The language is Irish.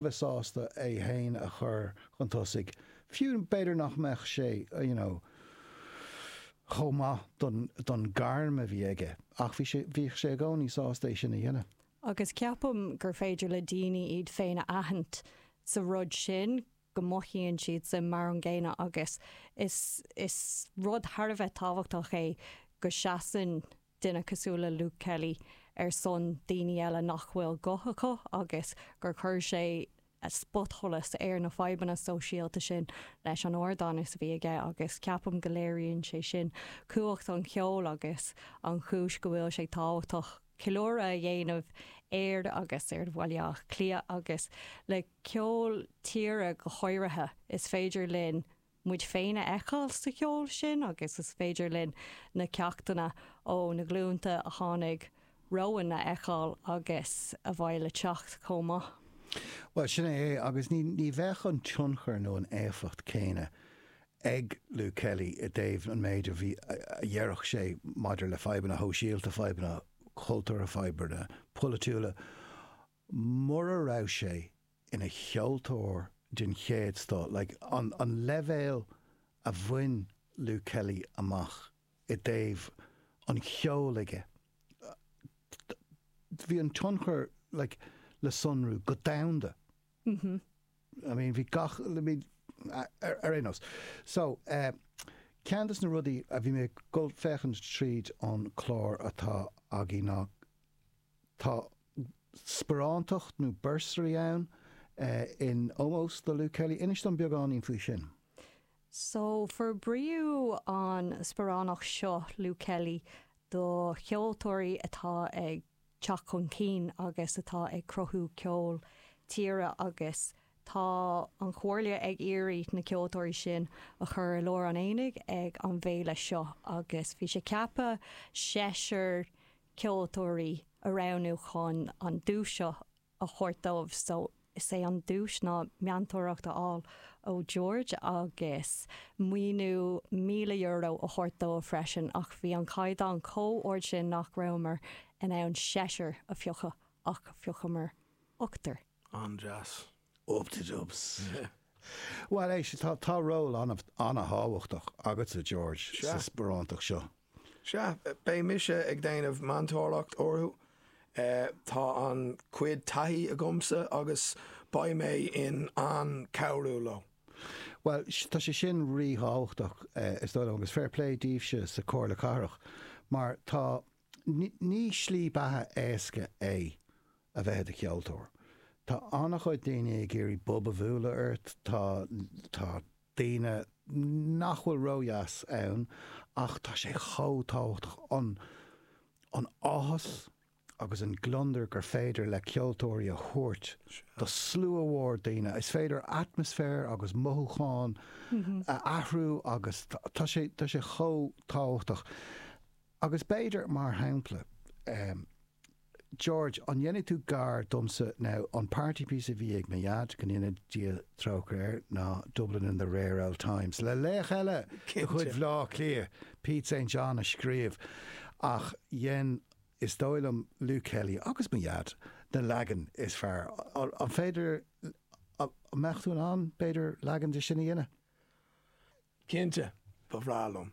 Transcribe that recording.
bheith sásta é féin a chur chun tosaigh, fiú, b'fhéidir nach mbeadh sé you know chomh maith don don gairm a bhí aige ach bhí sé bhíodh sé i gcónaí sásta é sin a dhéanamh. Agus ceapaim gur féidir le daoine iad féin a aithint sa rud sin, go mothaíonn siadsan mar an gcéanna agus is is rud thar a bheith tábhachtach é go seasann duine cosúil le Luke Kelly ar son daoine eile nach bhfuil guth acu agus gur chuir sé spotsholas ar na fadhbanna sóisialta sin leis an ardán is a bhí aige agus ceapaim go léiríonn sé sin cumhacht an cheoil agus an chúis go bhfuil sé tábhachtach ceiliúradh a dhéanamh air agus ar Bhaile Átha Cliath agus ar cheol tíre go háirithe. Is féidir linn. muid féin a fheiceáil sa cheol sin agus is féidir linn na ceachtanna ó na glúnta a tháinig romhainn a fheiceáil agus a bheidh le teacht chomh maith. Bhuel, sin é é agus ní bheadh an tionchar nó an éifeacht chéanna ag Luke Kelly i dtaobh an méid a bhí a déarfadh sé maidir le fadhbanna shóisialta, fadhbanna cultúrtha, fadhbanna polaitiúla. mura raibh sé ina cheoltóir den chéad scoth, like an an leibhéal a bhain Luke Kelly amach i dtaobh an cheoil aige, bhí an tionchar like le sonrú go domhanda, I mean bhí gach, I mean ar aon nós. So eh ceann de na rudaí a bhí mé ag dul ag féachaint tríd an clár atá againn ná tá, sparántacht nó bursary ann in ómós do Luke Kelly. Inis dom beagáinín faoi sin. So, forbraíodh an sparánacht seo, Luke Kelly, do cheoltóirí atá ag teacht chun cinn agus atá ag cruthú ceol tíre agus tá an Chomhairle ag iarraidh na ceoltóirí sin a chur i lár an aonaigh ag an bhféile seo agus bhí sé ceaptha seisear ceoltóirí a roghnú chun an duais seo a thabhairt dóibh. So, is é an duais ná meantóireacht a fháil ó George agus maoiniú €1,000 a thabhairt dóibh freisin ach bhí an caighdeán chomh ard sin nach rabhamar in ann seisear a phiocadh ach phiocamar ochtar. An-deas. Up-the-dubs. Bhuel, éist, tá ról an-thábhachtach agatsa, George, sa sparántacht seo. Sea, beidh mise ag déanamh meantóireacht orthu. Tá an-chuid taithí agamsa agus beidh mé in ann cabhrú leo. Bhuel, tá sé sin rí-thábhachtach, is dóigh liom, agus fair play daoibhse sa Chomhairle Cathrach mar tá Ní slí beatha éasca é a bheith i do cheoltóir. Tá an-chuid daoine ag iarraidh bob a bhualadh ort, tá daoine nach bhfuil ródheas ann ach tá sé chomh tábhachtach an áthas agus an gliondar gur féidir le ceoltóirí a thabhairt do shlua mór daoine. Is féidir atmaisféar agus mothúcháin a athrú agus tá sé chomh tábhachtach. Agus b'fhéidir, mar shampla, em. George, an ndéanfaidh tú gar domsa now, an party piece a bhí ag mo Dhaid, go ndéana Dia trócaire air, ná Dublin in the rare old times, le laoch eile de chuid Bhleá Cliath, Pete St. John a scríobh, ach dhein, is dóigh liom, Luke Kelly agus mo Dhaid na leagan is fearr. An féidir, an mbeadh tú in ann, b'fhéidir, leagan de sin a dhéanamh? Cinnte, ba bhreá liom.